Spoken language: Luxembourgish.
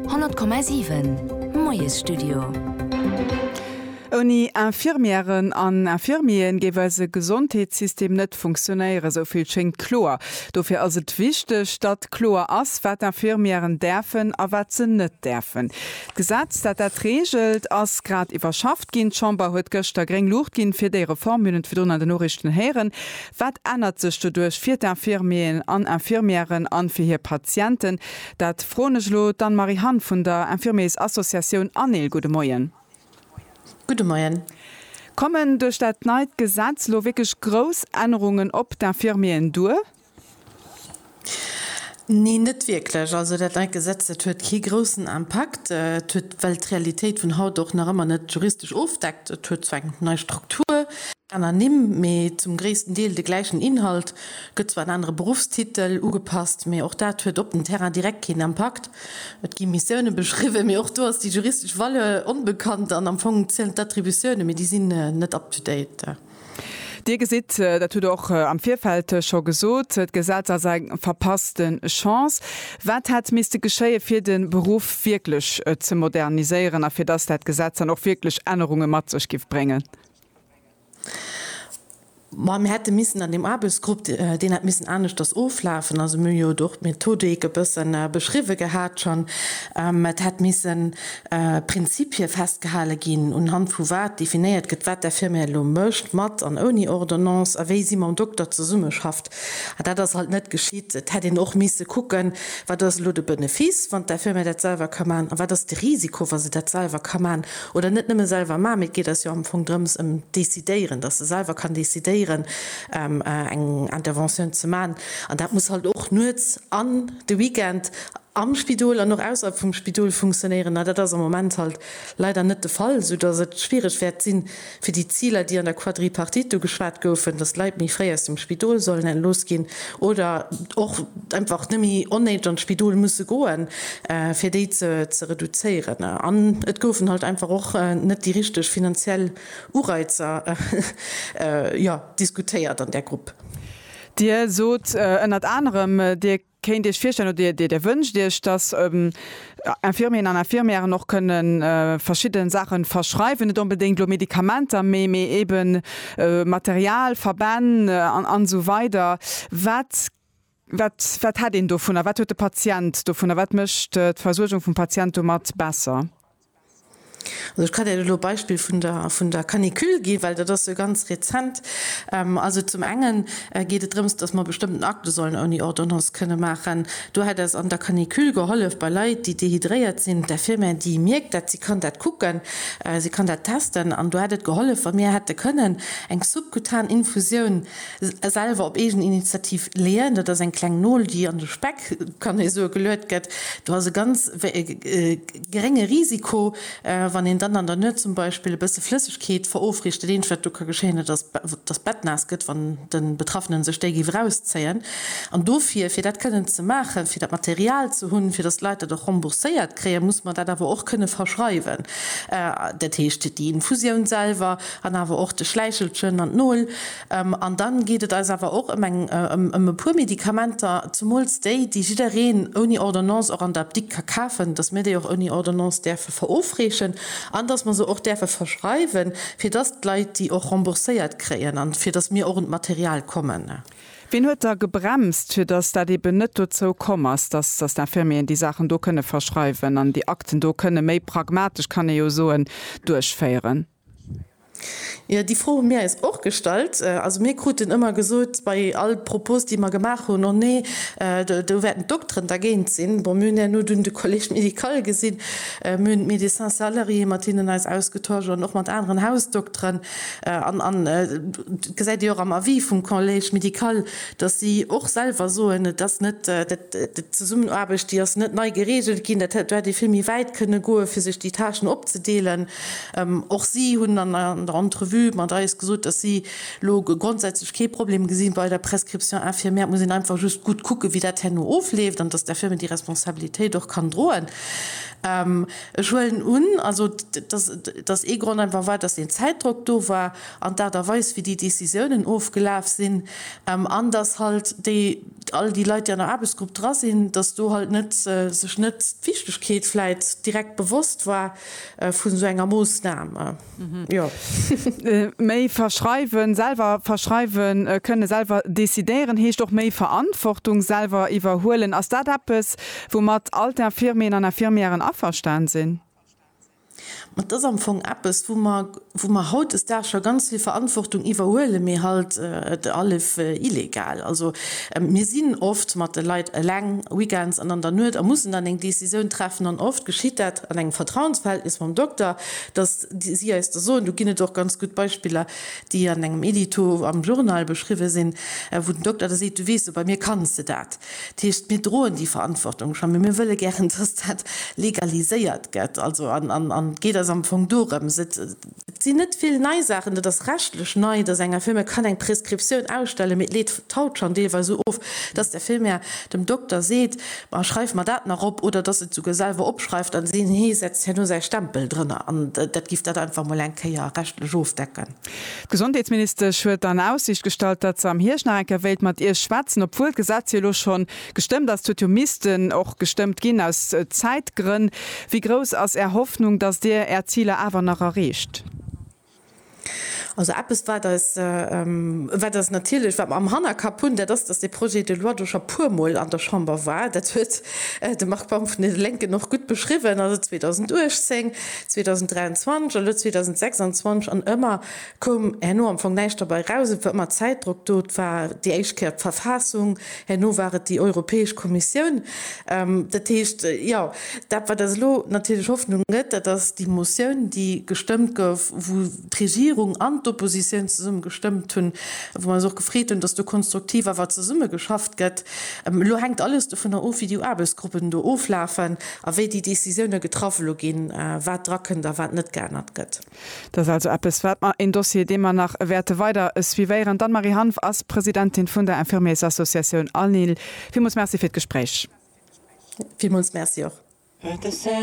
100,7 Moiesstudio. Ouni Infirmièren an Infirmieren géif eise Gesondheetssystem net funktionéieren, esou vill schéngt kloer. Dofir ass et wichteg, datt kloer ass, wat Infirmièren däerfen a wat se net däerfen. D'Gesetz, dat dat reegelt, ass grad iwwerschafft ginn. D'Chamber huet gëschter gréng Luucht ginn, fir déi Reform. Mir hunn et virdrun an den Noriichten héieren. Wat ännert sech doduerch fir d'Infirmieren an Infirmièren an fir hir Patienten? Dat froen ech elo d'Anne Marie Hann vun der Infirmiers Associatioun ANIL. Gudde Moien. Gudde Moien. Kommen duerch dat neit Gesetz elo wierklech grouss Ännerungen op d'Infirmieren duer? Nee, net wierklech. Also dat neit Gesetz, dat huet kee groussen Impakt. Et huet, well d'Realitéit vun haut och nach ëmmer net juristesch ofdeckt, et huet zwar eng nei Struktur, aner Nimm, mee zum gréissten Deel de gläichen Inhalt, gëtt zwar en anere Beruffstitel ugepasst, mee och dat huet op den Terrain direkt keen Impakt. Et gi Missioune beschriwwen, mee och do ass déi juristesch Valeur onbekannt an am Fong zielen d'Attributioune, mee déi sinn net up-to-date. Dir gesitt, dat hutt Der och am Virfeld scho gesot, d'Gesetz ass eng verpasste Chance. Wat hätt misste geschéien, fir de Beruff wierklech ze moderniséieren a fir dass dat Gesetz dann och wierklech Ännerunge mat sech géif bréngen? Ma mir hätte missen an deem Aarbechtsgrupp, deen hätt missen aneschters oflafen, also mir hu jo do och d'Methodik e bësse beschriwwen gehat schonn, et hätt missen, Prinzipie festgehale ginn, unhand vu wat definéiert gëtt, wat där Firma elo mécht, mat an ouni Ordonnance, a wéi si mam Dokter zesummeschafft. A dat ass halt net geschitt. Et hätt een och misse kucken, Wat ass elo de Benefice, wann där Firma dat selwer ka maachen? A wat ass de Risiko, wa se dat selwer ka maachen? Oder net nëmme selwer maachen, mee et geet eis jo am Fong drëms, ëm d'Decidéieren, dass se selwer kann decidéieren, eng Interventioun ze maachen. An dat muss halt och nuets an de Weekend am Spidol an och ausyyerhalb vum Spidol funktionéieren, a dat ass am Moment halt leider net de Fall, soudass et schwierig wäert sinn, fir déi Ziler, déi an der Quadripartite do geschwat goufen, dass d'Leit méi fréi aus dem Spidol sollen entlooss ginn oder och einfach net méi onnéideg an d'Spidol musse goen, fir déi ze reduzéieren. An et goufen halt einfach och net déi richtig finanziell Ureizer, jo, diskutéiert an där Grupp. Dir sot ënnert anerem, Dir Kéint Dir Iech virstellen oder Dir wënscht Iech, dass Infirmieren an Infirmièren och kënne verschidde Saache verschreiwen, net onbedéngt elo Medikamenter, mee mee eebe Material, Verbänn an esou weider? Wat wat wat hätt een dovunner? Wat huet de Patient dovunner? Wat mécht d'Versuergung vum Patient domat besser? Also ech ka där elo d'Beispill vun der, vun der Canicule ginn, well dat ass jo ganz rezent. Also zum enge geet et drëms, dass mer bestëmmten Acte sollen ouni Ordonnance kënne maachen. Do hätt eis an der Canicule gehollef bei Leit, déi dehydréiert sinn, d'Infirmière, déi mierkt dat, si kann dat kucken, si kann dat testen. An do hätt et gehollef, wa mir hätte kënnen eng subkutan Infusioun selwer op eegen Initiativ leeën. Dat ass eng kleng Nol, déi an de Speck, kann ee soen, geluet gëtt. Do ass e ganz. gerénge Risiko, wann een dann an der Nuet zum Beispill e bësse Flëssegkeet verofriicht. Dat Eenzegt, wat do ka geschéien, dat ass, datt d'Bett naass gëtt, wann de Betraffenen sech déi géif erauszéien. An dofir, fir dat kënnen ze maachen, fir dat Material ze hunn, fir datt d'Leit dat och rembourséiert kréien, muss mer dat awer och kënne verschreiwen, dat heescht déi Infusioun selwer an awer och de Schläichelchen an d'Nol. An dann geet et eis awer och ëm e puer Medikamenter, zemools déi, déi jiddereen ouni Ordonnance och an der Apdikt ka kafen, dass mir déi och ouni Ordonnance däerfe verofreechen an dass mer se och däerfe verschreiwen, fir dass d'Leit déi och rembourséiert kréien a fir dass mir och un d'Material kommen. Wien huet da gebremst, fir dass dat eeben net dozou komm ass, dass d'Infirmieren déi Saachen do kënne verschreiwen an déi Akten do kënne méi pragmatesch, kann ee jo soen, duerchféieren? Jo, déi Fro hu mir äis och gestallt. Also mir kruten ëmmer gesot bei all Propos, déi mer gemaach hunn, Oh nee, do wäerten d'Dokteren dergéint sinn. Bon, mir hunn herno dunn de Collège médical gesinn, mir hunn d'Médecins salariés, mat deenen eis ausgetauscht an och mat aneren Hausdokteren. An et gesäit ee jo och am Avis vum Collège médical, datt si och selwer soen, et ass net, d'Zesummenaarbecht déi ass net nei gereegelt ginn. Dat hätt ee vill méi wäit kënne goen, fir sech déi Tâchen opzedeelen. Och si hunn an der Entrevue mat eis gesot, datt si elo grondsätzlech kee Problem gesi bei der Prescription infirmière. Et muss een einfach just gutt kucken, wéi dat herno ofleeft an datt d'Infirme déi Responsabilitéit och kann droen. Ech huelen un, also, datt ee Grond einfach war, datt deen Zäitdrock do war an d'Aart a Weis, wéi déi Décisiounen ofgelaf sinn an datt halt déi, all déi Leit, déi an der Aarbechtsgrupp dra sinn, datt do halt net, sech net d'Wichtegkeet vläicht direkt bewosst war. vun esou enger Moossnam. Méi verschreiwen, selwer verschreiwen kënnen, selwer decidéieren heescht och méi Verantwortung selwer iwwerhuelen. Ass dat eppes, woumat all d'Infirmieren an Infirmièren averstan sinn? Ma et ass am Fong eppes, wou mer, wou mer hautdesdaags scho ganz vill Verantwortung iwwerhuelen, mee halt allef illegal. Also mir sinn oft mat de Leit eleng weekends an an der Nuet a mussen dann eng Décisioun treffen an oft geschitt dat an engem Vertrauensverhältnis mam Dokter, datt si eis da soen, do ginn et och ganz gutt Beispiller, déi an engem Edito am Journal beschriwwe sinn, wou den Dokter da seet, du weess jo, bei mir kanns de dat. Dat heescht, mir droen déi Verantwortung schonn, mä mir wëlle gären, datt dat legaliséiert gëtt. Also, an et geet eis am Fong dorëms. Et sinn net vill nei Saachen. Et ass rechtlech nei, dass eng Infirmière kann eng Prescriptioun ausstellen, mee et leet d'Haut schonn deelweis esou of, dass d'Infirmière dem Dokter seet, Ma schreif mer dat nach op. Oder dass se et souguer selwer opschreift a si hee setzt herno säi Stempel drënner. An dat giff dat einfach mol eng Kéier rechtlech ofdecken. D'Gesondheetsministesch huet an Aussiicht gestallt, datt se am Hierscht nach eng Kéier wéilt mat Iech schwätzen, obwuel d'Gesetz jo elo schonn Gestëmmt ass. D'huet jo missten och gestëmmt ginn, aus Zäitgrënn. Wéi grouss ass Är Hoffnung, datt Dir Är Ziler awer nach erreecht? Also eppes, wat eis, wat eis natierlech, wat mer am Hannerkapp hunn, dat ass, datt dee Projet de loi do scho puermol an der Chamber war. Dat huet de Marc Baum vun de Lénken och gutt beschriwwen, also 2018, 2023 an elo 2026, an ëmmer Koum herno am Fong näischt derbei raus. Et war ëmmer Zäitdrock do. Et war déi éischt Kéier d'Verfassung, herno war et déi Europäesch Kommissioun. Dat heescht, jo, dat wat eis elo natierlech Hoffnung gëtt, dat ass déi Motioun, déi gestëmmt gouf, wou d'Regierung an d'Oppositioun zesumme gestëmmt hunn, wou mer eis och gefreet hunn, dass do konstruktiv awer zesumme geschafft gëtt. Elo hänkt alles dovunner of, wéi déi Aarbechtsgruppen do oflafen a wéi déi Décisiounen getraff elo ginn, wat drakënnt a wat net geännert gëtt. Dat ass also eppes, wat mer, een Dossier, dee mer nach wäerte weider suivéieren. D'Anne-Marie Hanff ass Presidentin vun der Infirmiers-Associatioun ANIL. Villmools Merci fir d'Gespréich. Villmools Merci och.